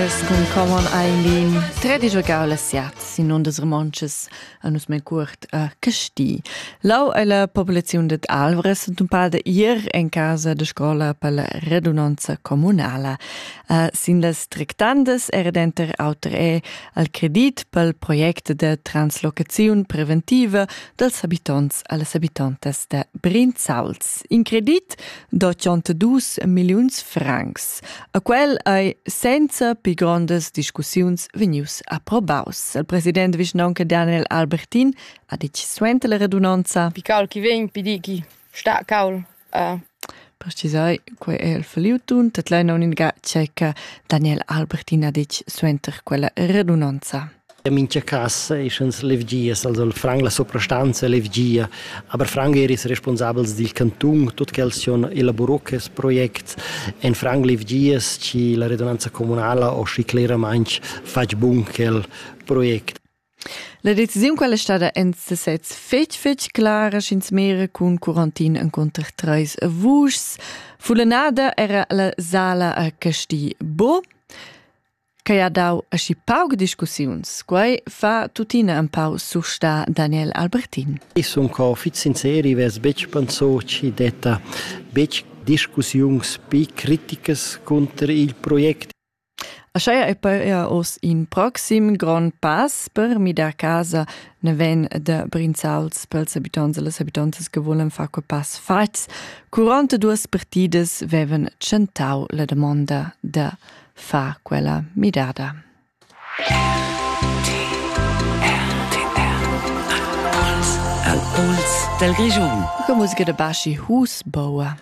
Con coman ein tredisch giar la siat sin ondas romontschas a nus mein cuort a Casti. Lau ei la populaziun de Alvres und un pal de ir en casa de scola per la redunanza comunala. Uh, sin las tractandas era denter auter è al credit pel project de translocaziun preventiva dels habitonts a las habitantas de Brinzauls. In credit d'82 milliuns francs. A quel ei senza pi grondas discussiuns vegnius approbaus. Il president vischnaunca Daniel Albertin ha ditg suenter la redunanza: Pi caul chi vegn, pi di chi sta caul. Uh. Precisai, quei è il faliutun, dat leina uninga ceca Daniel Albertin ha ditg suenter quella redunanza. In mincha casa eschans levgias, also il Frank, la suprastanza è levgia, aber Frank er is responsabels dil cantun, tut quels sun elaboro quest project. En Frank levgias chi la redunanza comunala ho schi cleramaing fatg bun quel project. La decisiun quella è stata en sesez fetg fetg clara sch'ins mera cun quarantin encunter treis vuschs. Fulenada era la sala a Casti Bo. Quei ha dau aschi pauc discussiuns. Quei fa tuttina empau surstar Daniel Albertin. Ich sun co fitg sinceri, vess betg pensau chi detta betg discussiuns pi criticas cunter il project. Ascheia è poi er oz in proxim grond pass per midar casa ne ven de Brinzals pels habitants e les habitantes che volen far quei pass fatgs. Curante duas partidas veven tschentau la domanda de fa quella midada. Del Region. Che musica de Baschi Husbauer.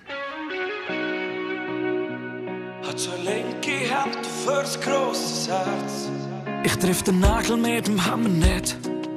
Hat so linke Hand fürs große Herz. Ich triff den Nagel mit dem Hammer nicht.